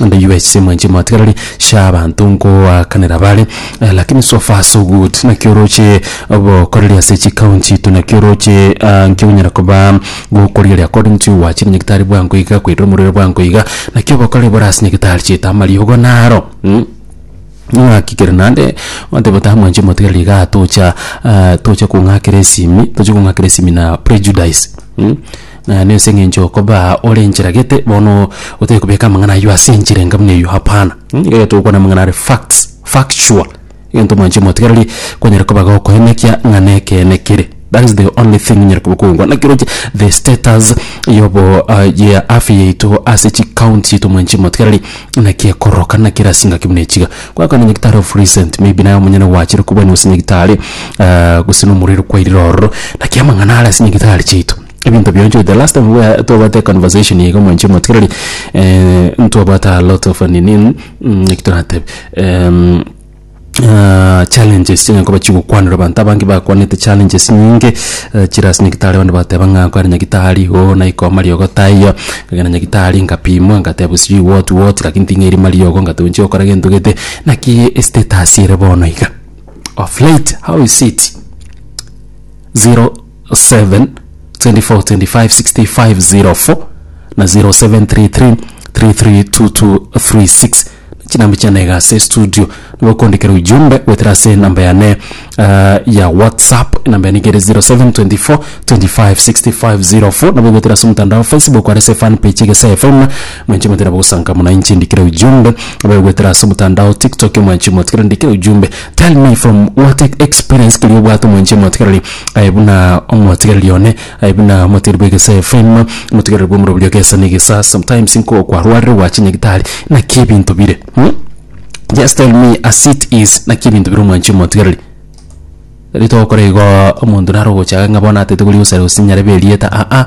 And you guys mwenche mwatigarari sha abanto nkoakanera bare eh, lakini so far so good naki oroche obokoreri ase chikaunti itu naki oroche ah, nki onyara koba gokorigeria according to wachi na nyagitari bwango iga koirira omorero bwango iga naki obokoreri bore ase nyagitari cheta amariogo naro mm? ng'akigere nande oteba ta mwenche motigareri iga tocha ah, tocha kong'akera esimi tocha kong'akera esimi na prejudice mm? Na nense engencho okoba ore enchera gete bono otari kobeka amang'ana ayio ase enchera enga buna eyio hapana. Mh nigo egento ogokwana amang'ana are facts factual egento mwanche motigereri kwanyare koba gokoenekia ng'a nekeene kere that is the only thing onyare koba okongwa naki oroche the status yobo ya afya yaito ase chi county chiaito mwanche motigereri naki ekororoka naki ere ase engaki buna echiga kwakwana nyagetari of recent maybe naye omonyene gwachire kobwania gose nyagetari gose nomorwaire kwairire ororo naki amang'ana are ase nyagetari chiaito. ebinto bionsi the last time we twabwate conversation iga mwanchi motigereri ntwabwate a lot of nini eki toratebe em, ah, challenges chinya koba chigokwanera abanto abange bakwanete challenges nyinge eh, chire ase nyagitari abande bateba ng'a kware nyagitari igo naikoma riogo taiyo nkagenda nyagitari nkapimwa ngatebwa sijui what what lakini ting'erima riogo ngateba nchi gokora gento gete naki estatus ere bono iga of late how is it zero 0724256504 na 0733332236 chinamba chiane iga ase estudio nigo kondikera ujumbe goetera ase enamba yane eh, ya whatsapp enamba yane igere 0724256504 nabo goetera ase omotandao wa facebook are ase fan page egese fm mwenche motera bogosanka muna inche ndikire ujumbe abe goetera ase omotandao tiktok mwenche motigere ndikire ujumbe Tell me from what ex- experience keri obwate omoenche omotigereri aye buna omotigereri one aye buna omotigereri bw'egese FM omotigereri bw'omorobio oria gesa negesa sometimes nko kwarwarire gwache nyagitari naki ebinto bire hmm? just tell me as it is naki ebinto bire omoenche omotigereri eri togokora igo omonto naro ogochaga ng'a bono atete koria gosare gose nyarebe erieta aa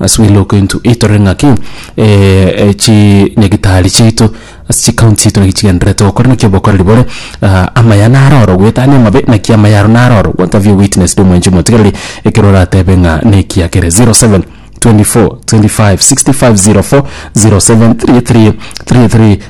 As we look into it torore ng'aki chinyagitari chiaito ase chikaunti chiaito naki chigendererete gokora naki obokoreri bore amaya naro oro goetania amabe naki amaya aro naro oro what have you witnessed omwencho omotigereri ekero oratebe ng'a nekiya kere 0724256504 073333.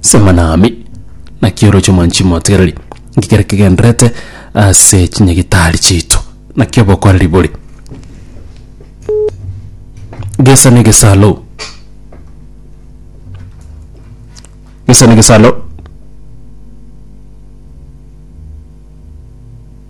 Sema nami, naki oroche omwanchimi motegereri, ngikere kegenderete ase chinyagitari chiaito, naki obokoreri bore gesa negesalo gesa negesalo.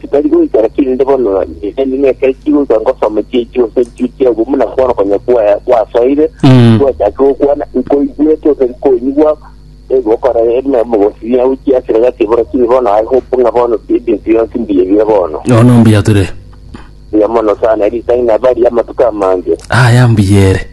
Titari goika lakini inde bono nigo ning'eke echi goika ngosome chichi gose nchiri chia obomu na bono konya kwa- kwasoire Mm. gwachake gokwana nkoigwete gose nkonyigwa egokora eme mogosiria au chiasire gati bono kiri bono I hope ng'a bono ebinto bionsi mbuya biya bono Yono mbuya tore. buya mono sana eri tang'ina bari amatuko amange Aya mbuyere.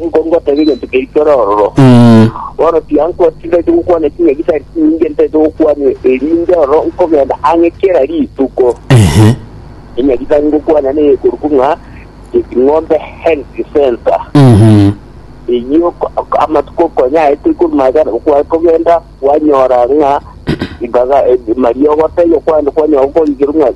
Nigo ngoteba egento keitore ororo, bono tiankwa tindagete gokwana ching'aki tari chinyinge ntagete gokwana, erinde ororo nkogenda ang'e kera rituko. Eng'aki tari ngokwana neye korokwa ng'a Cheping'ombe Health Centre. Eyio amatuko konya aete ikomi magana gokwana kogenda kwanyora ng'a ribaga eh, mariogo taiyo kwande kwanyora gokorigerwa ng'a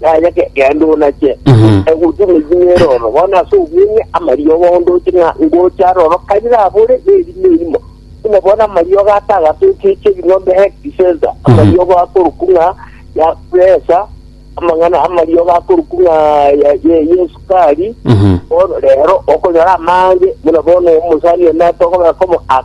Yaya ge- genda onache Mhm. egutu neginyere oro bono ase obweng'e amariogo ondoche ng'a ngocha aroro karire abore nerimo erimo buna bono amariogo atagasa echiche ebing'ombe hekti sesa amariogo akoruku ng'a yakuresa amang'ana amariogo akoruku ng'a ya- ye- yesukari Mhm. bono rero okonyora amange buna bono omosani onatogobekomo